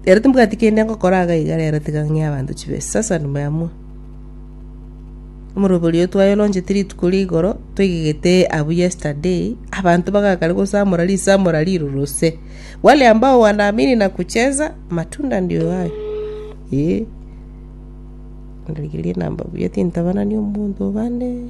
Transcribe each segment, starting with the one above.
Rero timbwati kende ngokora iga iga rero tiga ng'e abanto chibesa. Sasa nimeamua. Omorobori oyo twayolonchete rituko ria igoro, toigegete abu yesterday, abanto bagakare gosamora risamora riruruse. Wale ambao wanaamini na kucheza, matunda ndio hayo. Eh. Ndarigeria namba buya tintabanani omonto bande.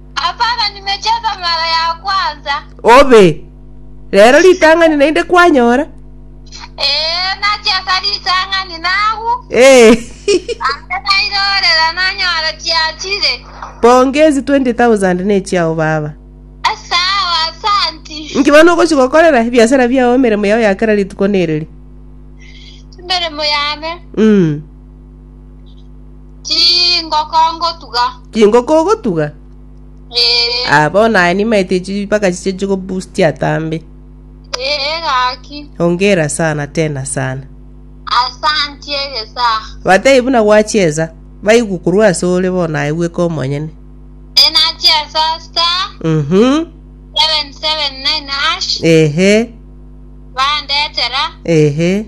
Hapana, nimecheza mara ya kwanza. Obe. Rero ritang'ani naende kwanyora? Ee, nachesa ritang'ani nagwo. Ee. Ande nairorera nanyora chiachire. Pongezi 20,000 nechiao baba. Sawa, asanti. Inki bono ogochi gokorera ebiasara biao emeremo yao ya kera rituko nereri? Emeremo yane. Mm. Chingoko ngotuga. Chingoko ogotuga? Ee. Ah, bono naye nimaete echi mpaka chiche chigoboosti atambe. Ee gaki. Hongera sana tena sana. Asanti egesa. Batebi buna gwachiesa, baigwe korwa ase ore bono naye bweka omonyene. Enachiesa star Mhm. 779 hash Ehe, bandetera ehe.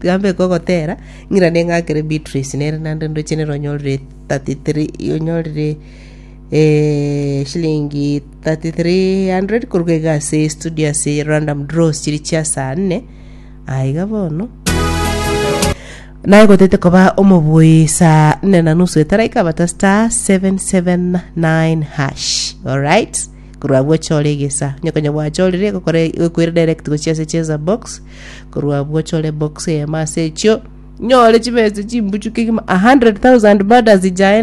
Tiga mbeke ogotera, ng'ira neng'akere Beatrice nere naende ndoche nere onyorire 33 onyorire eh, shilingi 3300 koruga iga ase studio ase Random Draws chiri chia saa nne aiga bono naye gotete koba omobui saa nne na nusu etaraika bata star 779 hash alright korwa bwochore egesa nyokonya bwachorire gokore gokwere direct gochia ase cheza box Korwa abwo ochore box eyemo ase echio, nyore chibesa chimbuchuke kima 100,000 bado azijae